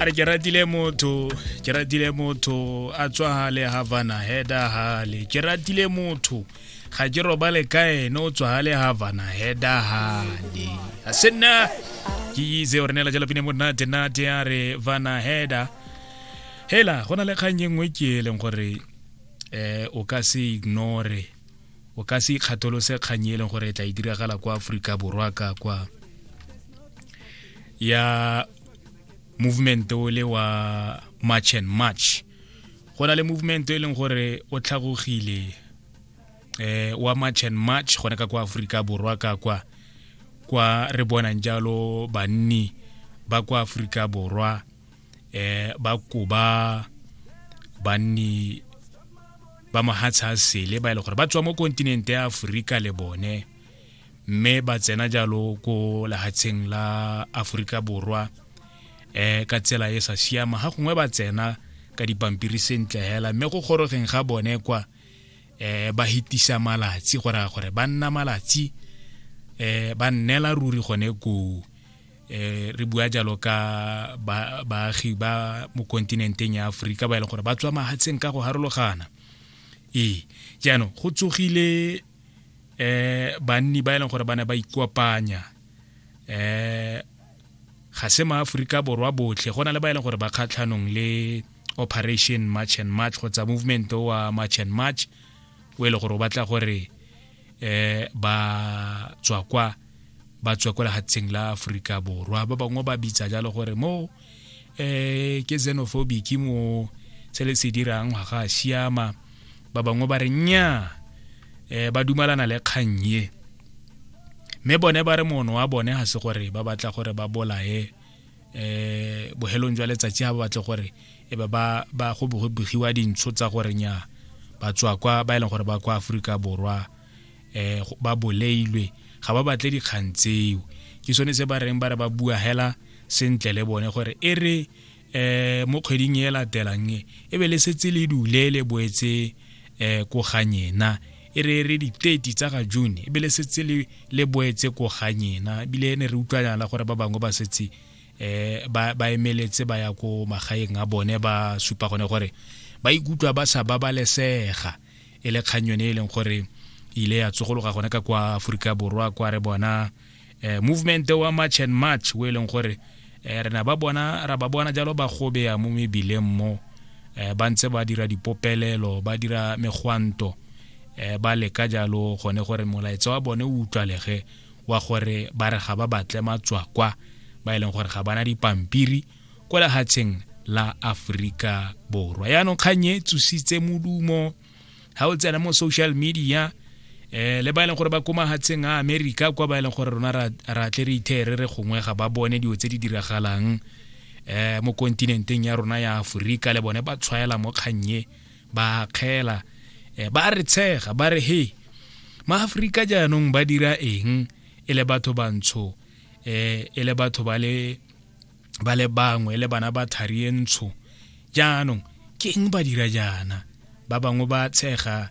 a re ke ratile motho ke ratile motho a tswa hale havana heda hale ke ratile motho ga ke robale ka ene o tswa hale havana heda hale a se nna ke itse gore ne la jala pine monate nate a re vana heda hela go na le kgang e nngwe ke e leng gore um o ka se ignore o ka se ikgatholose kgang e leng gore e tla e diragala kwa aforika borwa ka kwa ya movement o le wa march and march go na le movement e leng gore o tlhagogile eh wa march and march gone ka kwa aforika borwa ka kwa kwa re bonang jalo banni ba kwa aforika borwa eh ba koba banni ba mohatsha a sele ba e le gore ba tswa mo kontinente ya aforika le bone mme ba tsena jalo ko lehatsheng la aforika borwa um ka tsela e sa siama ga gongwe ba tsena ka dipampiri sentle hela mme go gorogeng ga bone kwa um ba hitisa malatsi go raya gore ba nna malatsi um ba nnela ruri gone koo eh re bua jalo ka baagi ba mo kontinenteng ya aforika ba e leng gore ba tswa mahatsheng ka go harologana ee jaanong go tsogile eh banni ba e leng gore ba ne ba ikopanya eh ga se maaforika borwa botlhe go na le ba e leng gore ba kgatlhanong le operation march and march kgotsa movement wa march and march o e le gore o batla gore eh ba tswa kwa ba tswa kwa lehatsheng la aforika borwa ba bangwe ba bitsa jalo gore mo eh ke xenophobic mo se le se dirang ga ga siama ba bangwe ba re nya eh ba dumalana le kgang ye mme bone ba re mono wa bone ga se gore ba batla gore ba bolae eh bohelong jwa letsatsi ga ba batle gore e ba ba go begiwa dintsho tsa gore nya ba tswa kwa ba e leng gore ba kwa aforika borwa eh ba boleilwe ga ba batle dikgang tseo ke sone se ba reng ba re ba bua hela sentle le bone gore e re eh mo kgweding e latelang e, e be le setse le dule le boetse eh ko ganyena e re re di 30 tsa ga june e be le setse le le boetse ko ganyena ebile ne re utlwanyana la gore ba bangwe ba setse eh ba ba emeletse ba ya ko magaeng a bone ba supa gone gore ba ikutlwa ba sa babalesega e le kgang yone e leng gore ile ya tsogologa gone ka kwa aforika borwa kwa re bona eh, movement wa march and march o e leng gore eh, re na ba bona ra ba bona jalo ba gobeya mo mebileng mo eh, ba ntse ba dira dipopelelo ba dira megwanto eh, ba leka jalo gone gore molaetsa wa bone o utlwalege wa gore ba re ga ba batle matswakwa ba e leng gore ga bana dipampiri kwa lehatsheng la Aforika Borwa yaanong kgang e tsositse modumo ga o tsena mo social media eh le ba e leng gore ba ko mahatsheng a america kwa ba e leng gore rona ra tle re ithere re gongwe ga ba bone dilo tse di diragalang eh mo kontinenteng ya rona ya aforika le bone ba tshwaela mo kgannye ba kgela eh, ba re tshega ba re he maaforika jaanong ba dira eng e le batho bantsho eh e le batho ba le ba le bangwe le bana ba thari e ntsho jaanong ke eng ba dira jaana ba bangwe ba tshega